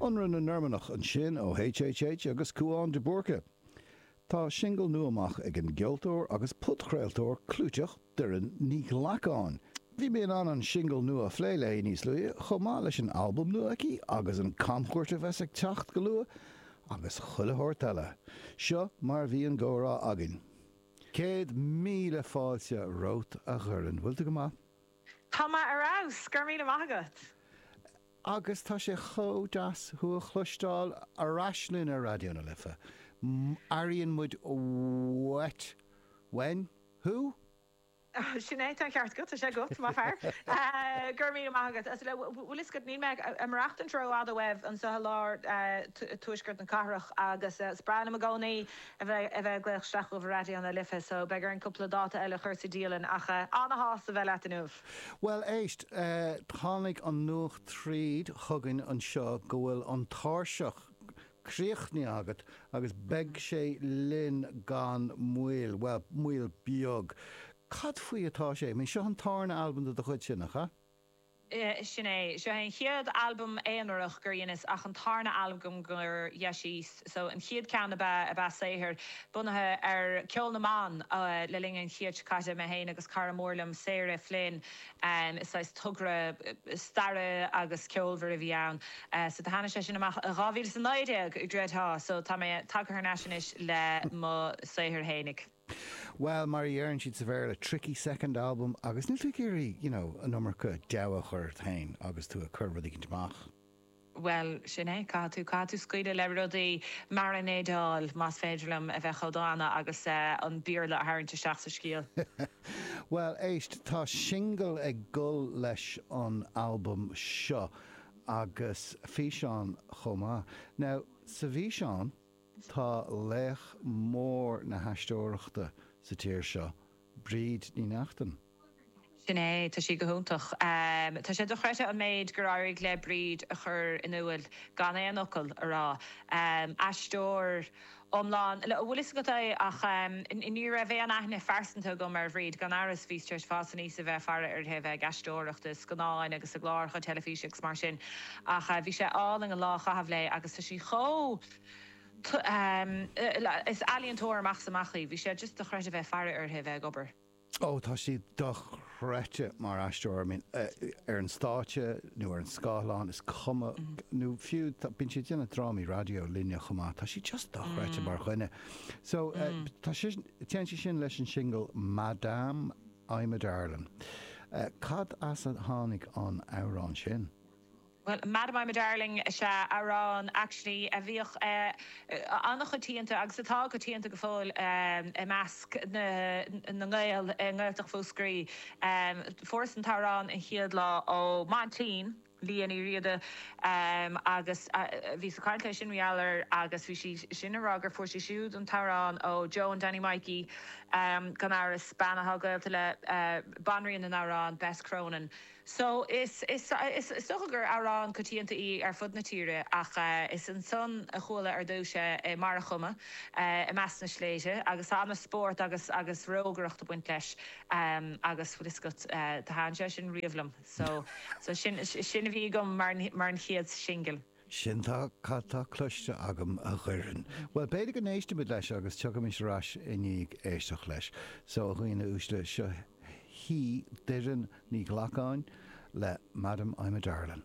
Ionradh na Normannach ansin ó HHH agus Cúán de Búrca. Tá singil nua amach ag an gceoltóir agus podchraoltóir clúiteach Doireann Ní Ghlacáin. Bhí mé in ann an singil nua a phlé léi níos luaithe, chomh maith leis an albam nua aici agus an camchuairt a bheas ag teacht go luath agus chuile shórt eile. Seo mar a bhí an gcomhrá againn. Céad míle fáilte romhat a Dhoireann. Bhfuil tú go maith? Tá mé ar fheabhas, go raibh míle maith agat! Agus tá sé chomh deas thú a chloisteáil ar ais linn ar Raidió na Life. Airíonn muid uainn thú! Sin é, tá an ceart agat, tá sé go maith, más fearr. Go raibh míle maith agat. Bhfuil 'fhios agat, níl mé imithe ró-fhada uaibh anseo i lár tuaisceart na cathrach agus is breá liom i gcónaí a bheith a bheith ag glaoch isteach chuig Raidió na Life so beidh orainn cúpla dáta eile a chur sa dialann ach ana-shásta bheith leat inniu. Bhuel éist, tháinig an nuacht tríd chugainn anseo go bhfuil an tairseach críochnaithe agat agus beidh sé linn gan mhoill, bhuel, moill beag. Cad faoi atá sé, seo an tarna albam de do chuidse, nach ea? Sin é. Seo é an chéad albam aonarach gur dheineas ach an tarna albam gur dheineas so an chéad ceann ab ea ab ea saothar bunaithe ar ceol na mban le linn an chéid seo caite. Mé féin agus cara mór liom, Sarah Flynn, is saghas togra staire agus ceolmhar a bhí ann. So do tháinig sé sin amach i dhá mhíle is a naoi déag, i gceart, so tá mé tagtha thar n-ais anois le mo shaothar fhéinig. bhuel, mar a dheireann siad sa Bhéarla, tricky second album agus níl tú ag iarraidh, you know, an iomarca deabhadh a chur ort féin agus tú ag cur rud éigin amach. bhuel, sin é, caithfidh tú, caithfidh tú scaoileadh le rudaí, maranéideáil, más féidir liom a bheith chomh dána, agus an Béarla a tharraingt isteach sa scéal. bhuel, éist, tá singil ag dul leis an albam seo agus físeán chomh maith. Now, sa bhfíseán. Tá laoch mór na haisteoireachta sa tír seo, Bríd Ní Neachtain. Sin é, tá sí go hiontach. Tá sé dochreidthe an méid gur éirigh le Bríd a chur in iúil gan aon fhocal a rá. Aisteoir iomlán, an bhfuil fhios agat? Ach ní raibh aon aithne phearsanta agam ar Bhríd, gan amhras, bhíos tar éis fás aníos a bheith ag faire uirthi, a bheith ag aisteoireacht i scannáin agus i gcláracha teilifíse agus mar sin. Ach bhí sé álainn an lá a chaitheamh léi agus tá sí chomh. Is ealaíontóir amach 's amach í. Bhí sé just dochreidte bheith ag faire uirthi bheith ag obair. Ó tá sí dochreidte mar aisteoir. I mean, ar an stáitse nó ar an scáthlán, is cuma, nó fiú, bíonn sí ag déanamh drámaí raidió linne chomh maith, tá sí just dochreidte mar dhuine. So, tá sí, téann sí sin leis an singil Madame, I'm a Darlin. Cad as a tháinig an amhrán sin? Bhuel, Madam I'm a Darling is ea amhrán, actually, a bhíodh an-choitianta agus atá coitianta go fóill i measc na nGael i nGaeltacht Mhúscraí. Fuaireas an t-amhrán an chéad lá ó m'aintín, Liadh Ní Riada, agus bhíos ag caint léi sin mar gheall air, agus bhí sí sin ag rá gur fuair sí siúd an t-amhrán ó Joan Danny Maidhcí, gan amhras, bean atá gaolta le banríon na n-amhrán, Bess Cronin. So, is dócha gur amhrán coitianta í ar fud na tíre ach is ansan a chuala ar dtúis é mar a chuma i measc na sléibhte agus an-spórt agus agus rógaireacht ag baint leis agus bhfuil 'fhios agat, thaitin sé sin riamh liom. So, so sin a bhí agam mar an chéad singil. Sin atá cad tá cloiste agam, a Dhoireann. Bhuel, b'fhéidir go n-éistfimid leis agus tiocfaimid ar ais i ndiaidh éisteacht leis. So, a dhaoine uaisle, seo í Doireann Ní Ghlacáin le Madam, I'm a Darlin'.